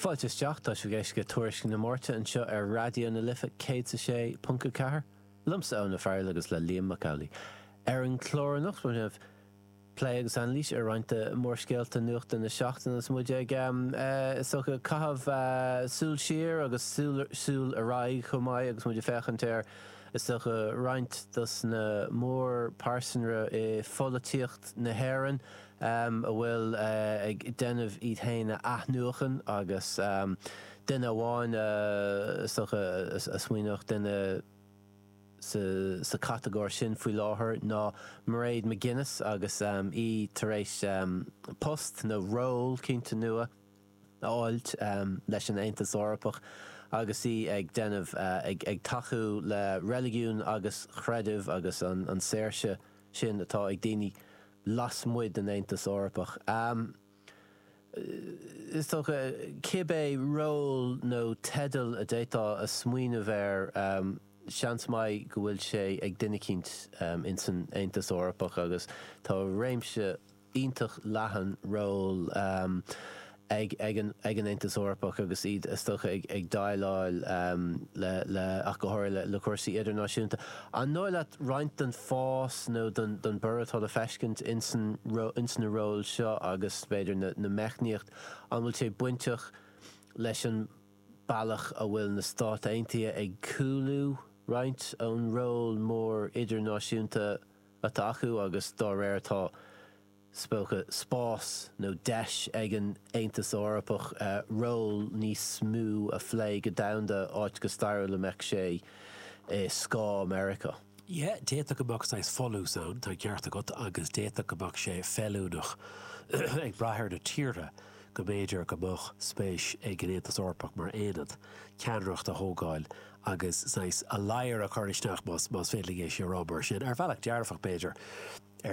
Fáilte isteach, tá sibh ag éisteacht le Tuairisc na Máirte anseo ar Raidió na Life 106.4, liomsa Eoin Ó Fearghail agus le Liam Mac Amhlaigh. Ar an gclár anocht déanfaimid plé agus anailís ar roinnt de mhórscéalta nuachta na seachtaine agus muid ag, is dócha, caitheamh súil siar agus súil ar aghaidh chomh maith agus muid ag féachaint ar, is dócha, roinnt dos na mórphearsana i pholaitíocht na hÉireann. a bhfuil ag déanamh iad féin a athnuachain agus duine amháin is dócha a smaoineodh duine sa chatagóir sin faoi láthair ná Mairead McGuinness agus í tar éis post nó ról cinnte nua a fháilt leis an Aontas Eorpach agus í ag déanamh ag tacú le reiligiún agus creideamh agus an saoirse sin atá ag daoine lasmuigh den Aontas Eorpach. Is dócha, cibé ról nó teideal a d'fhéadfá a smaoineamh air, seans maith go bhfuil sé ag duine eicínt in san Aontas Eorpach agus tá réimse iontach leathan ról ag an Aontas Eorpach agus iad is dócha ag déileáil le, ach go háirithe, le cúrsaí idirnáisiúnta. An dóigh leat roinnt den fás nó den borradh atá le feiscint ins na róil seo agus, b'fhéidir, na meicníochtaí, an bhfuil sé bainteach leis an bealach a bhfuil na Stáit Aontaithe ag cúlú roinnt ón ról mór idirnáisiúnta atá acu agus dá réir atá, is dócha, spás nó deis ag an Aontas Eorpach ról níos mó a phlé go domhanda, áit go stairiúil a mbeadh sé i scáth Meiriceá. Yeah, d'fhéadfadh go mbeadh saghas folús ann, tá an ceart agat, agus d'fhéadfadh go mbeadh sé feiliúnach, ag brath ar na tíortha, go mb'fhéidir go mbeadh spéis ag an Aontas Eorpach mar aonad ceannaireacht a thógáil agus saghas a ladhar a chur isteach, más féidir liom é sin a rá mar sin, ar bhealach dearfach b'fhéidir, ar.